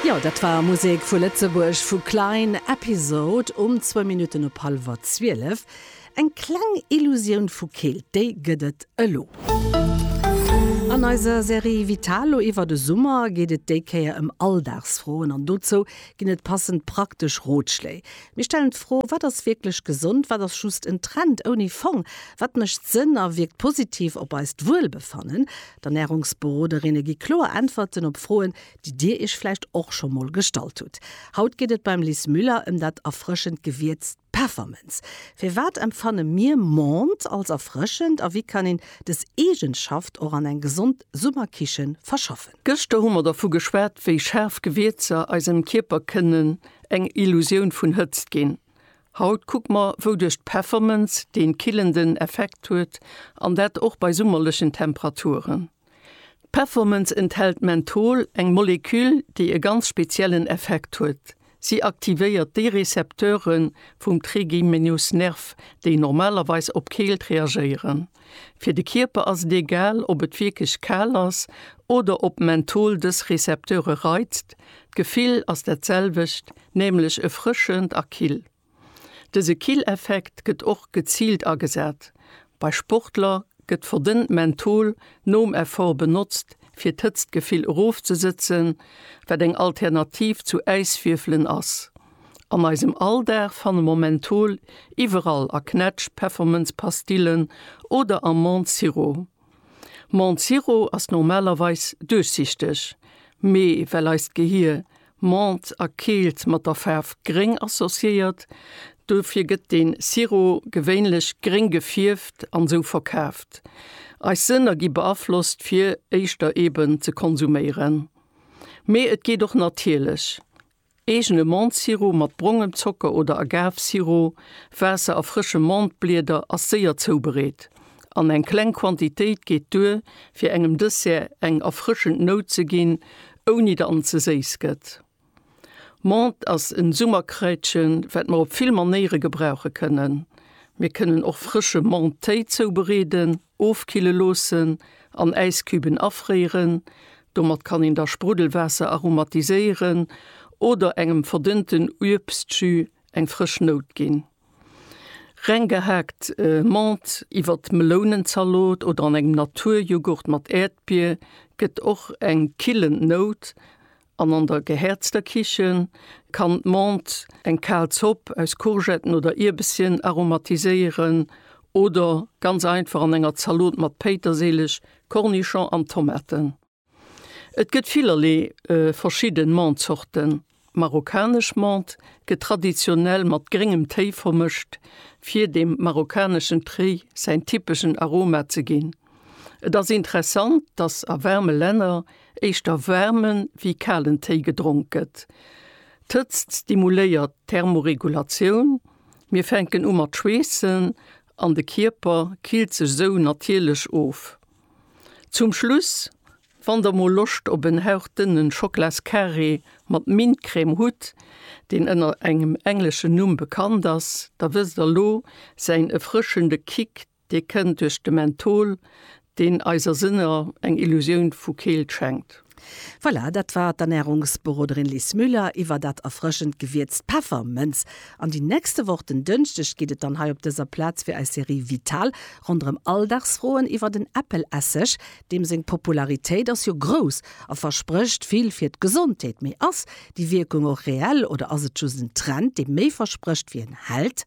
Jo, dat war Musek vu Lëtzebuerg, vu Klein Episode um zwou Minutten op hallwer zwielef. Eng kleng Illusioun vu Keelt, déi gëtt et elo. An eiser Serie Vitalo iwwer de Summer geet et déi Kéier ëm Alldagsfroen an dozou ginn et passend praktesch Rotschléi. Mir stellen d'Fro, Wat ass wierklech gesond? Wat ass just en Trend ouni Fong? Wat mécht Sënn a wierkt positiv op eist Wuelbefannen? D'Ernärungsberoderinne gi kloer Äntwerten op Froen, déi Dir Iech vläicht och scho mol gestallt hutt. Haut geet et beim Lis Müller ëm dat erfrëschend Gewierz Peffermënz. Firwat empfanne mir Menthe als erfrëschend a wéi kann een dës Eegenschaft och an eng gesond Summerkiche verschaffen? Gëschter hu mer dervu geschwat, wéi schaarf Gewierzer eisem Kierper kënnen eng Illusioun vun Hëtzt ginn. Haut kuck mer wou duerch d'Peffermënz deen killenden Effekt huet an dat och bei summerlechen Temperaturen. D'Peffermënz enthält Menthol, eng Moleküll déi e ganz speziellen Effekt huet, si aktivéiert déi Rezepteure vum Trigeminusnerv déi normalerweis op Keelt reagéieren. Fir de Kierper ass et egal, ob et wierklech kal ass oder ob Menthol dës Rezepteure reizt, d'Gefill ass dat selwecht, nämlech erfrëschend a kill. Dëse Killeffekt gëtt och geziilt agesat, bei Sportler gëtt verdënnt Menthol nom Effort benotzt, fir d'Hëtztgefill erofzesëtzen, wat eng Alternativ zu Äiswierfelen ass. An eisem Alldag fanne mer Menthol iwwerall, a Knätsch, Peffermënzpastillen oder am Menthe Sirop. Menthe Sirop ass normalerweis duerchsichteg, mee well eist Gehier Menthe a Keelt mat der Faarf gréng associéiert, dofir gëtt de Sirop gewéinlech gréng gefierft an sou verkaaft. Eis Sënner gi beaflosst fir éischter eben ze konsuméieren. Mee et geet och natierlech, Eegene Mentesirop mat brongem Zocker oder Agavesirop, Waasser a frësche Mentesblieder ass séier zoubereet an eng kleng Quantitéit geet duer, fir engem Dessert eng erfrëschend Nout ze ginn, ouni datt en ze séiss gëtt. Menthe ass en Summerkraitchen, wat mer op vill Manéiere gebrauche kënnen. Mir kënnen och frësche Menthethéi zoubereeden. Ofkille loossen an Äiscubën afréiren. Domat kann een da Spruddelwaasser aromatiséieren oder engem verdënnten Uebstjus eng frësch Nout ginn. Reng gehaakt Menthe iwwert d'Melounenzalot oder an engem Naturjoghurt mat Äerdbier gëtt och eng killend Nout An an der gehäerzter Kichen kann d'Menthe eng kal Zopp aus Courgetten oder Ierbesschen aromatiséieren oder ganz einfach an enger Zalot mat Péitersilich, Kornischong an Tomaten. Et gëtt villerlee verschidden Menthe-Zorten. Marokkanesch Menthe gëtt traditionell mat gréngem Téi vermëscht, fir dem marokkaneschen Téi säin typeschen Aroma ze ginn. Et ass interessant, dass a waarme Länner éischter waarmen wéi kalen Téi gedronk gëtt. D'Hëtzt stimuléiert d'Thermoregulatioun, mir fänken u mat schweessen an de Kierper killt sech sou natierlech of. Zum Schluss, wann der mol Loscht op en hauchdënne Schoklascarré mat Mintcrème hutt, deen ënner engem engleschen Numm bekannt ass, da wësst der lo säin erfrëschende Kick, Dee kënnt duerch de Menthol, deen eiser Sënner eng Illusioun vu Keelt schenkt. Voilà, dat war d'Ernärungsberoderin Liz Müller iwwer dat erfrëschend Gewierz Peffermënz. An déi nächste Woch, den Dënschdeg, geet et dann hei op dëser Plaz fir eis Serie Vital ronderëm Alldagsfroen iwwer den Äppelesseg. Deem seng Popularitéit ass jo grouss a versprécht vill fir d'Gesondheet. Mee ass déi Wierkung och reell oder ass et just en Trend, dee méi versprécht wéi en hält?